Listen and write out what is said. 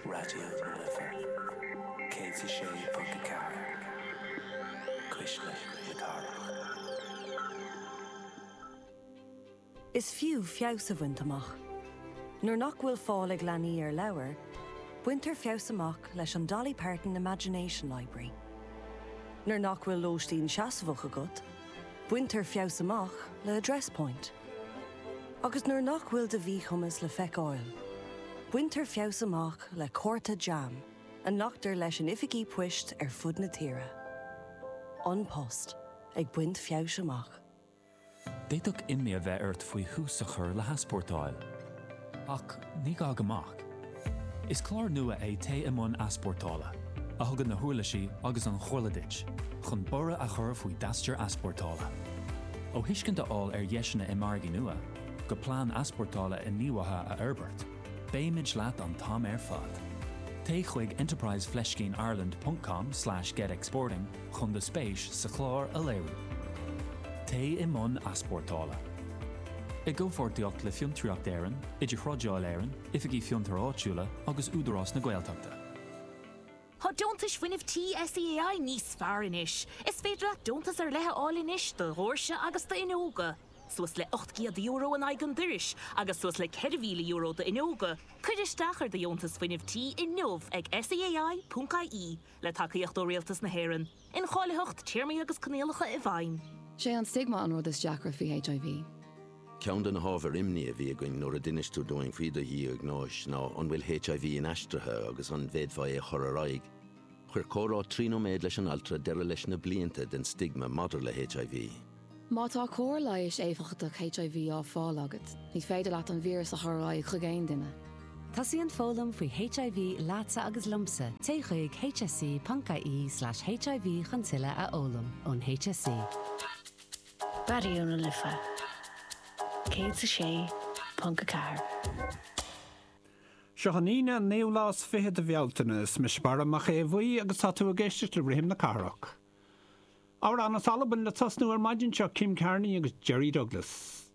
Raidió na Life 106.4, Cuisle na Cathrach. Is fiú feabhas a bhaint amach. Nuair nach bhfuil fáil ag leanaí ar leabhair, baintear feabhas amach leis an Dolly Parton Imagination Library. Nuair nach bhfuil lóistín seasmhach agat, Baintear feabhas amach le Address Point. Agus nuair nach bhfuil do mhíchumas le feiceáil, baintear feabhas amach le cárta JAM a nglactar leis in oifigí poist ar fud na tíre. An Post ag baint feabhais amach. D'fhéadfadh imní a bheith ort faoi thús a chur le heaspórtáil. Ach ní gá go mbeadh. Is clár nua é Téigh i mBun Easpórtála, a thugann na huirlisí agus an chomhairle duit chun borradh a chur faoi d'aistear easpórtála. Ó thuiscint a fháil ar dheiseanna i margaí nua, go plean easpórtála inníomhaithe a fhorbairt, beimid leat an t-am ar fad! Téigh chuig enterprise fleiscín ireland ponc com slash get exporting chun do spéis sa chlár a léiriú. Téigh i mbun easpórtála. I gcomhpháirtíocht le Fiontraíocht Éireann, Idirthrádáil Éireann, Oifigí Fiontair Áitiúla agus Údarás na Gaeltachta. Tá Deontais Fuinnimh Tí SEAI níos fearr anois! Is féidir leat deontas ar leith a fháil anois do dhóirse agus d'fhuinneoga, suas le €800 in aghaidh an dorais agus suas le €4,000 d'fhuinneoga. Cuir isteach ar do Dheontas Fuinnimh Tí inniu ag SEAI.ie. le tacaíocht ó Rialtas na hÉireann, incháilitheacht, téarmaí agus coinníollacha i bhfeidhm. Sé an stigma an rud is deacra faoi HIV. Ceann de na hábhair imní a bhí againn nuair a d'inis tú dúinn faoi do dhiagnóis ná an bhfuil HIV inaistrithe agus an bhféadfá é a chur ar aghaidh. Chuir comhrá trí nóiméad leis an altra deireadh leis na blianta den stigma maidir le HIV. Má tá cóir leighis éifeachtach HIV á fáil agat, ní féidir leat an víreas a chur ar aghaidh chuig aon duine. Tosaíonn foghlaim faoi HIV leatsa agus liomsa, téigh chuig hse.ie/hiv chun tuilleadh a fhoghlaim ón HSE. Raidió na Life 106.4. Seo an Aoine an naoú lá is fiche de Bhealtaine. Is mise Barra Mac Aodha Bhuí agus tá tú ag éisteacht le Rithim na Cathrach. Amhrán as Albain le tosnú ar maidin seo, Kim Carnie agus Jerry Douglas.